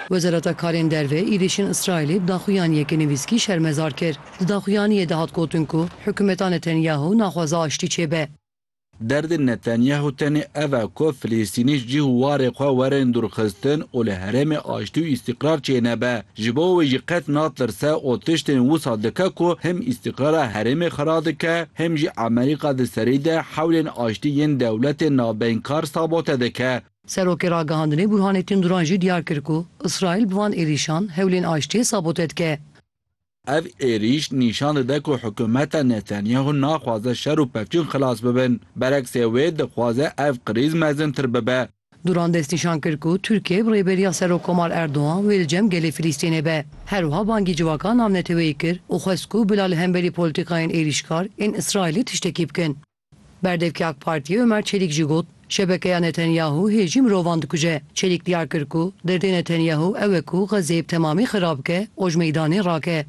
Wezareta Karên Derve êrîşên Îsraîlê daxuyaniyeke nivîskî şermezar kir. Di daxuyaniyê de hat gotin ku hikûmeta Netanyahu naxwaze aştî çêbe. Derdê Netanyahu tenê ev e ku Filistînî cih û warê xwe werin dûrxistin û li herêmê aştî û îstîqrar çênebe. Ji bo wê jî qet natirse û tiştên wisa dike ku him îstîqrara herêmê xira dike him jî Amerîka di serî de hewlên aştî yên dewletên navbeynkar sabote dike. Serokê Ragihandinê Burhanettin Duran jî diyar kir ku Îsraîl bi van êrîşan hewlên aştiyê sabote dike. Ev êrîş nîşan dide ku hikûmeta Netanyahu naxwaze şer û pevçûn xilas bibin. Bereksê wê dixwaze ev krîz mezintir bibe. Duran destnîşan kir ku Tirkiye bi rêberiya Serokkomar Erdogan wê li cem gelê Filistînê be. Her wiha bangî civaka navneteweyî kir û xwest ku bila li hemberî polîtîkayên êrîşkar ên Îsraîlê tiştekî bikin. Berdevkê AK Partiyê Ömer Çelîk jî got, Şebekeya Netanyahu hê jî mirovan dikuje. Çelîk diyar kir ku derdê Netanyahu ew e ku Xezzeyê bi temamî xirab bike û ji meydanê rake.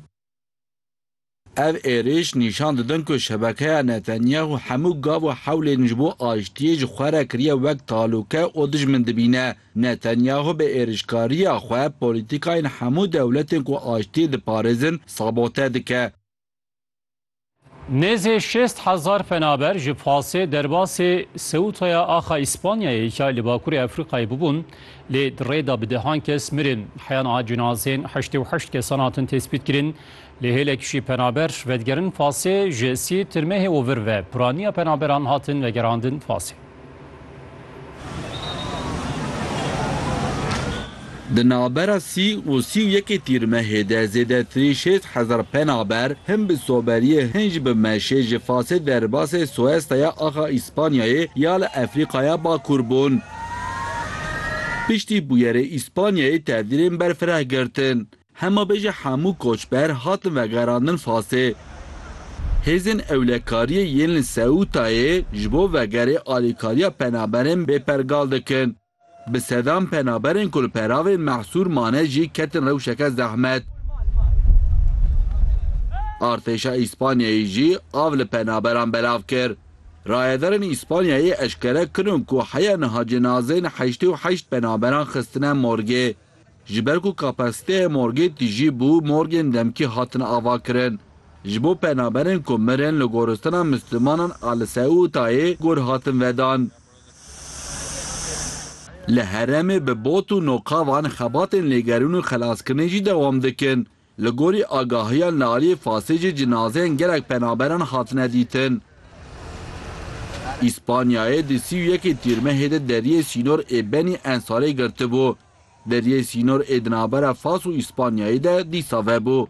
Ev êrîş nîşan didin ku şebekeya Netanyahu hemû gav û hewlên ji bo aştiyê ji xwe re kiriye wek talûke û dijmin dibîne. Netanyahu bi êrîşkariya xwe polîtîkayên hemû dewletên ku aştiyê diparêzin sabote dike. Nêzê şêst hezar penaber ji pasê derbasê Seutaya axa Îspanyayê ya li Bakurê Efrîqayê bûbûn, lê di rê de bi dehan kes mirin. Heyan a cinazên heştê û heşt kesan hatin tespîtkirin, lê hêlek jî penaber vedigerin pasê ji sî tirmehê û vir ve piraniya penaberan hatin vegerandin pasê. Di navbera sî û sî û yekê Tîrmehê de zêdetirî şêst hezar penaber hin bi soberiyê hin jî bi meşê ji Fasê derbasê Soesta ya axa Îspanyayê ya li Efrîqaya Bakur bûn. Piştî bûyerê Îspanyayê tevdîrên berfireh girtin. Hema bêje hemû koçber hatin vegerandin Fasê. Hêzên ewlekariyê yên li Seûtayê ji bo vegerê alîkariya penaberên bê pergal dikin. Bi sedan penaberên ku li peravên mehsûr mane jî ketin rewşeke zehmet. Artêşa Îspanyayê jî av li penaberan belav kir. Rayedarên Îspanyayê eşkere kirin ku heya niha cinazeyên heştê û heşt penaberan xistine morgê. Ji ber ku kapasiteyê morgê tijî bû, morgên demkî hatine avakirin. Ji bo penaberên ku mirin li goristina Mislimanan a li Seûtayê gor hatin vedan. Li herêmê bi bot û noqavan xebatên lêgerîn û xelaskirinê jî dewam dikin. Li gorî agahiya Nariyê Fasê jî cinazeyên gelek penaberan hatine dîtin. Îspanyayê di sî û yekê Tîrmehê de deriyê sînor ê Benî Ensarê girtibû. Deriyê sînor ê di navbera Fas û Îspanyayê de dîsa vebû.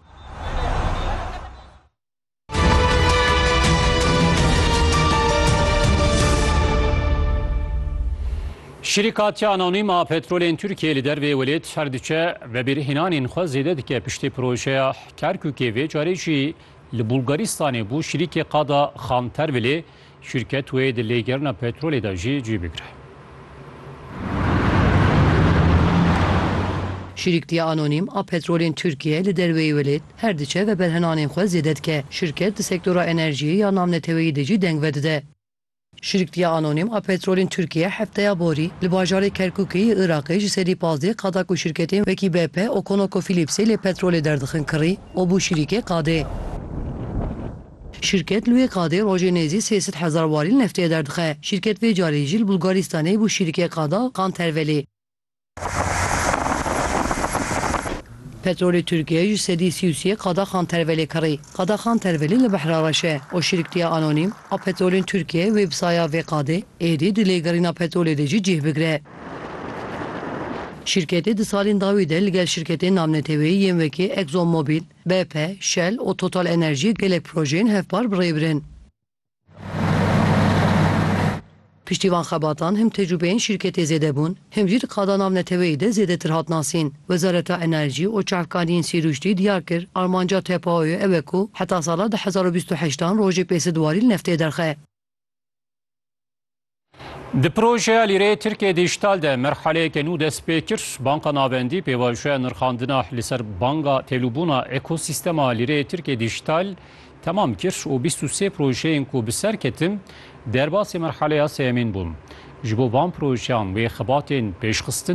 Şirîkatiya Anonîm a Petrolên Tirkiyeyê li dervê welêt her diçe vebirhênanên xwe zêde dike piştî projeya Kerkûkê vê carê jî li Bulgaristanê bû şirîkê qada Xantervilê Şîrket wê di lêgerina petrolê de jî cî bigire. Şîriktiya anonîm a petrolên Tirkiyeyê li derweyî welêt her diçe ve berhenanên xwe zêde dike. Şîrket di sektora enerjiyê ya navneteweyî de jî deng vedide. Şîriktiya anonîm a petrolên Tirkiyeyê hefteya borî li bajarê Kerkûkê yê Iraqê ji serî pazdeh qada ku şîrketên wekî BP û ConocoPhillipsê lê petrolê derdixin kirî û bû şîrîkê qadê. Şîrket li wê qadê rojê nêzî sê sed hezar warîl neftê derdixe. Şîrket vê carî jî li Bulgarîstanê bû şîrikê qada Kantervelê. Petrolê Tirkiye ji sedî sî û sê qada Kantervelê kirî. Qada Kantervelê li Behra Reş e û şîriktiya Anonîm a Petrolên Tirkiye websaya vê qadê êdî di lêgerîna petrolê de jî cih bigire. Şîrketê di salên dawî de li gel şîrketên namneteweyî yên wekî Exxon Mobil, BP, Shell û Total Enerjî gelek projeyên hevpar bi rê birin. Piştî van xebatan him tecrûbeyên şîrketê zêde bûn, him jî di qada navneteweyî de zêdetir hat nasîn. Wezareta Enerjî û Çavkaniyên Sîrûştî diyar kir, armanca TPO'yê ew e ku heta sala du hezar û bîst û heşt an rojê pêsed warî li neftê derxe. Di projeya lîreyê Tirkiyê Dîjîtal de merhaleyeke nû dest pê kir. Banka Navendî pêvajoya nirxandina li ser banga têlûbûna ekosîstema lîreyê Tirkiyê Dîjîtal temam kir û bîst û sê projeyên ku bi ser ketin derbasî merhaleya sêyemîn bûn. Ji bo van projeyan wê xebatên pêşxistin